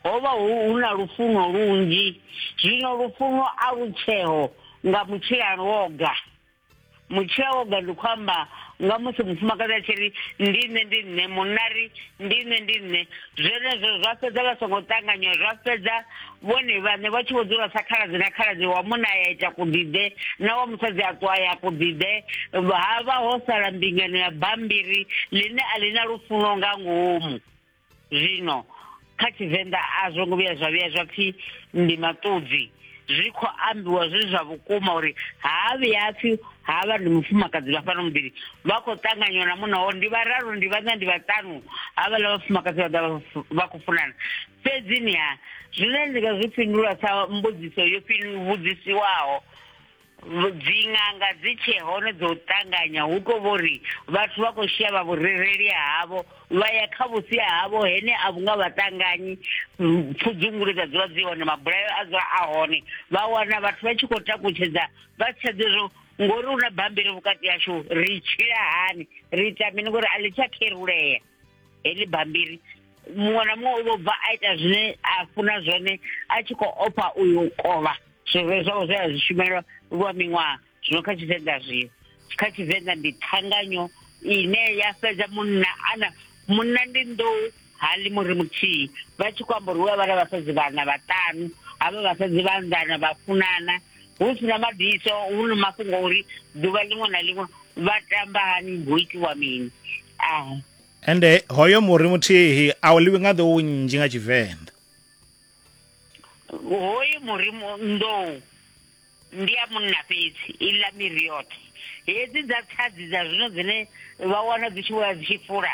ho vha hu hu na lufuno lunzhi zwino lufuno a lu tsheo nga mutshila lwoga mutshila woga ndi khou amba nga musi mufumakadzi a tshi ri ndi nṋe ndi nṋe munari ndi nṋe ndi nṋe zwenezwo zwa fhedza vha songo ṱanganywa zwa fhedza vhone vhaṋe vha tshi vho dzula sa khaladzi na khaladzi wa munna ya ita kuḓiḓe na wa musadzi a ṱwa ya kuḓiḓe ha vha ho sala mbingano ya bambiri ḽine a ḽi na lufuno nga ngomu zwino kha tshivenḓa a zwo ngo vhuya zwa vhuya zwa pfhi ndi maṱudzi zwi khou ambiwa zwi zwa vhukuma uri ha vhuya pfhi ha vha ndi mufumakadzi vha fhano muḓini vha khou ṱanganywa na munna wao ndi vhararu ndi vhaṋa ndi vhaṱanu havhaḽa vhafumakadzi vha ḓa vha khou funana fhedzi ni ha zwine ndi nga zwi fhindula sa mbudziso yo vhudzisiwaho dziṅanga dzi tshee hone dzo ṱanganya hu tou vho ri vhathu vha khou shavha vhurereli havho vha ya kha vhusi havho hene a vhunga vha ṱanganyi pfudzungule dza dzula dzi hone mabulayo a dzula a hone vha wana vhathu vha tshi khou takutshedza vha si tsha ḓizwo ngori hu na bammbiri vhukati hashu ri tshila hani ri ita mini ngori a ḽi tsha kherulea heḽi bambiri muṅwe na muṅwe u vho bva a ita zwine a funa zwone a tshi khou ofha uyu kovha zwivhe zwawe zwe a zwi shumelwa lwa miṅwaha zwino kha tshivenḓa zwio kha tshivenḓa ndi ṱhanganyo ine ya fhedza munna ana munna ndi nḓou hali muri muthihi vha tshi khou amba uri hu avha na vhasadzi vhana vhaṱanu havha vhasadzi vhanḓana vha funana hu si na mabiso hu na mafhungo uri ḓuvha ḽiṅwe na ḽiṅwe vha tamba hani hu itiwa mini ah. ende hoyo muri muthihi a u ḽiwi nga nḓou nnzhi nga tshivenḓa hoyu muri nḓou ndi ya munna fhedzi i ḽa miri yoṱhe hedzi dza tshadzi dza zwino dzine vha wana dzi tshi vhoya dzi tshi fula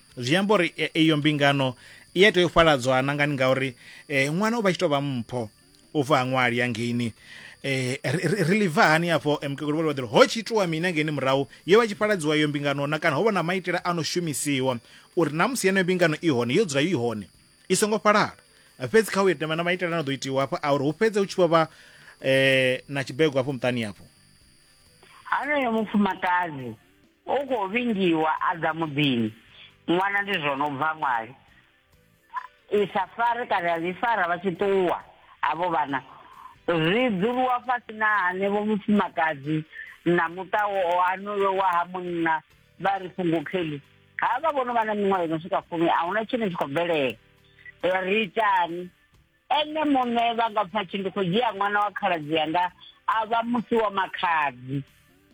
zwi amba uri e, iyo mbingano i a tea u fhaladzwa na ngani ngauri eh, ṅwana u vha tshi tou vha mpho u bva ha ṅwali ya ngeini eh, ri- ri ri livha hani hafho eh, mukegulu vhole vhaḓiri ho tshi itiwa mini ngeini murahu yo vha tshi fhaladziwa iyo mbingano na kana ho vha na maitele a no shumisiwa uri na musi yeneyo mbingano i hone yo dzula i hone i songo fhalala fhedzi kha u ita na maitele a no ḓo itiwa hafho a uri hu fhedze hu tshi vho vha eh, na tshibego hafho muṱani hafho haneyo mufumakadzi U khou vhingiwa a ḓa muḓini. Ṅwana ndi zwono bva ṅwali. I sa fare kana ya ḽi fara vha tshi ṱuwa havho vhana. Zwi dzuliwa fhasi na hanevho mufumakadzi na muṱa onoyo wa ha munna vha ri fhungukheli havha vhono vha na miṅwaha ino swika fumi ahuna tshine tshi khou bvelela ri itani. Ene muṋe vha nga pfa tshi ndi khou dzhia ṅwana wa khaladzi yanga a vha musi wa makhadzi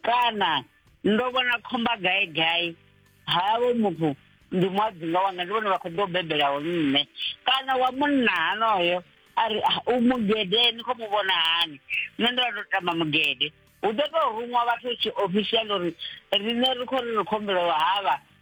kana ndo vhona khomba gai gai havho muthu ndi muadzinga wanga ndi vhone vha khou ḓo bebelaho nṋe kana wa munna hanoyo a ri ah, u mugede ni khou mu vhona hani nṋe ndo vha ndo tamba mugede hu ḓo tou ruṅwa vhathu tshi official uri riṋe ri khou ri ri khumbelo havha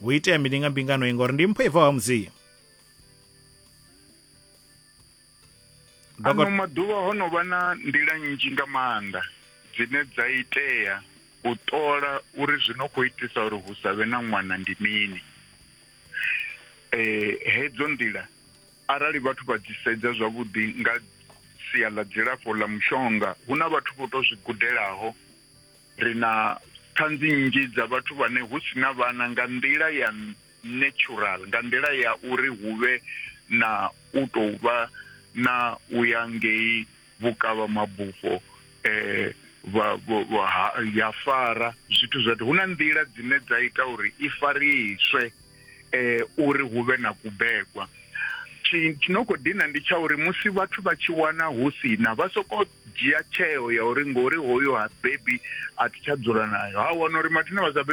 hu itea mini nga mbingano i ngori ndi mpho i bvaho ha mudzimu ano maḓuvha ho no vha na nḓila nnzhi nga maanḓa dzine dza itea u ṱola uri zwi no khou itisa uri hu sa vhe na ṅwana ndi mini um hedzo nḓila arali vhathu vha dzi sedza zwavhuḓi nga sia ḽa dzilafho ḽa mushonga hu na vhathu vho to zwi gudelaho Ri na ṱhanzi nnzhi dza vhathu vhane hu si na vhana nga nḓila ya natural, nga nḓila ya uri hu vhe na u tou vha na u ya ngei vhukavha mabufho eh, vha, vha, vha, ha- ya fara zwithu zwoṱhe. Hu na nḓila dzine dza ita uri i fariswe. eh, uri hu vhe na kubegwa tshi no khou dina ndi tsha uri musi vhathu vha tshi wana hu si na vha soko dzhia tsheo ya uri ngori hoyo ha bebi a thi tsha dzula nayo ha wana uri mathina vha sa bebi